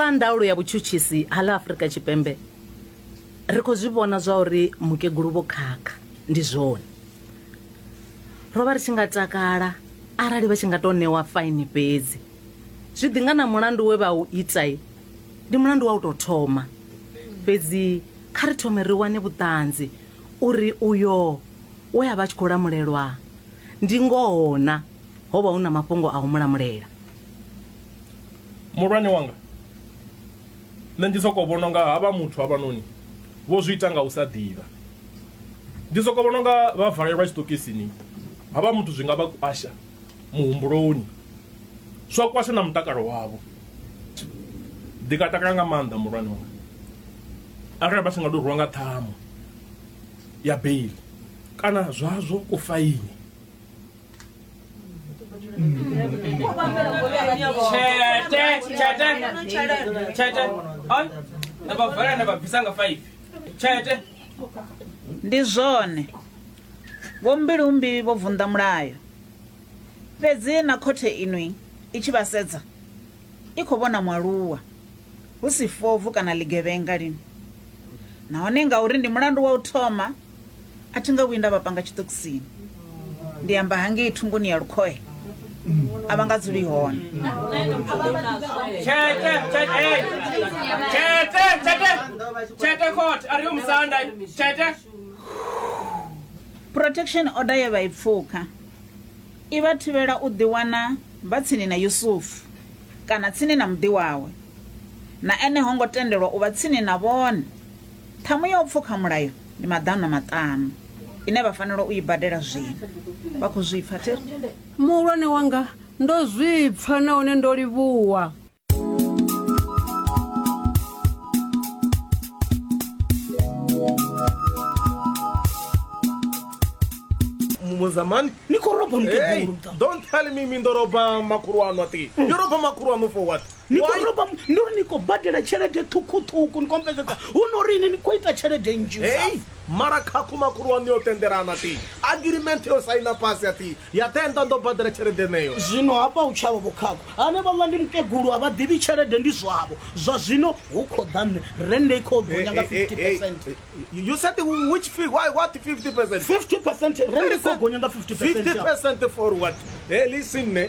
sa ndaulo ya vhutshutshisi ha ḽa afurika tshipembe ri khou zwi vhona zwa uri mukegulu vho khakha ndi zwone ro vha ri tshi nga takala arali vha tshi nga tou ṋewa faini fhedzi zwi ḓi nga na mulandu we vha u itai ndi mulandu wa u tou thoma fhedzi kha ri thome ri wane vhuṱanzi uri uyo we a vha a tshi khou lamulelwa ndi ngoho na ho vha hu na mafhungo a u mulamulela muhulwane wanga nṋe ndi soko vhona nga ha vha muthu havhanoni vho zwi ita nga u sa ḓivha ndi soko vhona nga vha valelwa tshiṱokisini ha vha muthu zwi nga vha kwasha muhumbuloni zwa kwasha na mutakalo wavho ndi nga takala nga maanḓa muhulwane wanga arali vha si nga to rwiwa nga ṱhamu ya bail kana zwazwo kufaini chete chete chete chete on nabavhala nababvisanga 5 chete ndi zwone vhombilumbi vho vunḓa mulayo fhedzi na khothe inwi i tshi vha sedza i khou vhona mwaluwa hu si fovu kana ḽigevhenga lini nahone ngauri ndi mulandu wa u thoma A thi nga vhuyi nda vha panga tshiṱokisini. Ndi amba hangei thungoni ya lukhohe. A vha nga dzuli hone. Tshete, tshete, hey. Tshete, tshete. Tshete khothe, a ri yo musanda. Tshete. Protection order ye vha i pfuka i vha thivhela u ḓiwana vha tsini na Yusufu kana tsini na muḓi wawe. Na ene ho ngo tendelwa u vha tsini na vhone. Ṱhamu ya u pfuka mulayo ndi maḓana maṱanu ine vha fanela u i badela zwino. Vha khou zwi pfa, thi ri? Muhulwane wanga, ndo zwi pfa nahone ndo livhuwa. muzamani ni khou roba mukegulu don't tell me mi ndo roba makhulu aṋu ati yo roba makhulu aṋu for what ni khou Why? roba mu- ndi uri ni khou badela tshelede ṱhukhuṱhukhu ni kompensesa hu no uri ini ni khou ita tshelede nnzhi hei mara khakhu makhulu waṋu yo tendelana ti agreement yo saina fhasi a ti ya tenda ndo badela tshelede neyo zwino hafha u tshavha vhukhakho ane vhaḽa ndi mukegulu a vha ḓivhi tshelede ndi zwavho zwa zwino hu khou ḓa nṋe rende i khou gonya nga 50 percent you said which fee why what 50 percent 50 percent rende i khou gonya nga 50 50 percent percent for what hey listen ne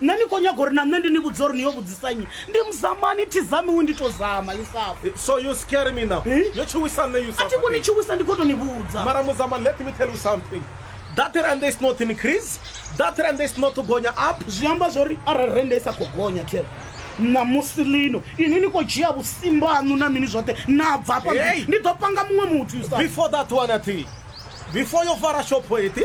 Nṋe ni khou nyaga uri na nṋe ndi ni vhudze uri ni yo vhudzisa nnyi? Ndi muzamani, thi zamiwi ndi to zama, Yusafa. So you scare me now? Hi? Yo tshuwisa nṋe Yusafa. A thi khou ni tshuwisa ndi khou to ni vhudza. Mara muzamani let me tell you something. That rand is not increase. That rand is not to gonya up. Zwi amba zwori arali rand isa kho gonya Thero. Na musi lino ini ni kho dzhia vhusimbanu na mini zwoṱhe na bva hafha ndi ḓo panga muṅwe muthu Yusafa. Before that one athi. Before yo fara shopho ethi.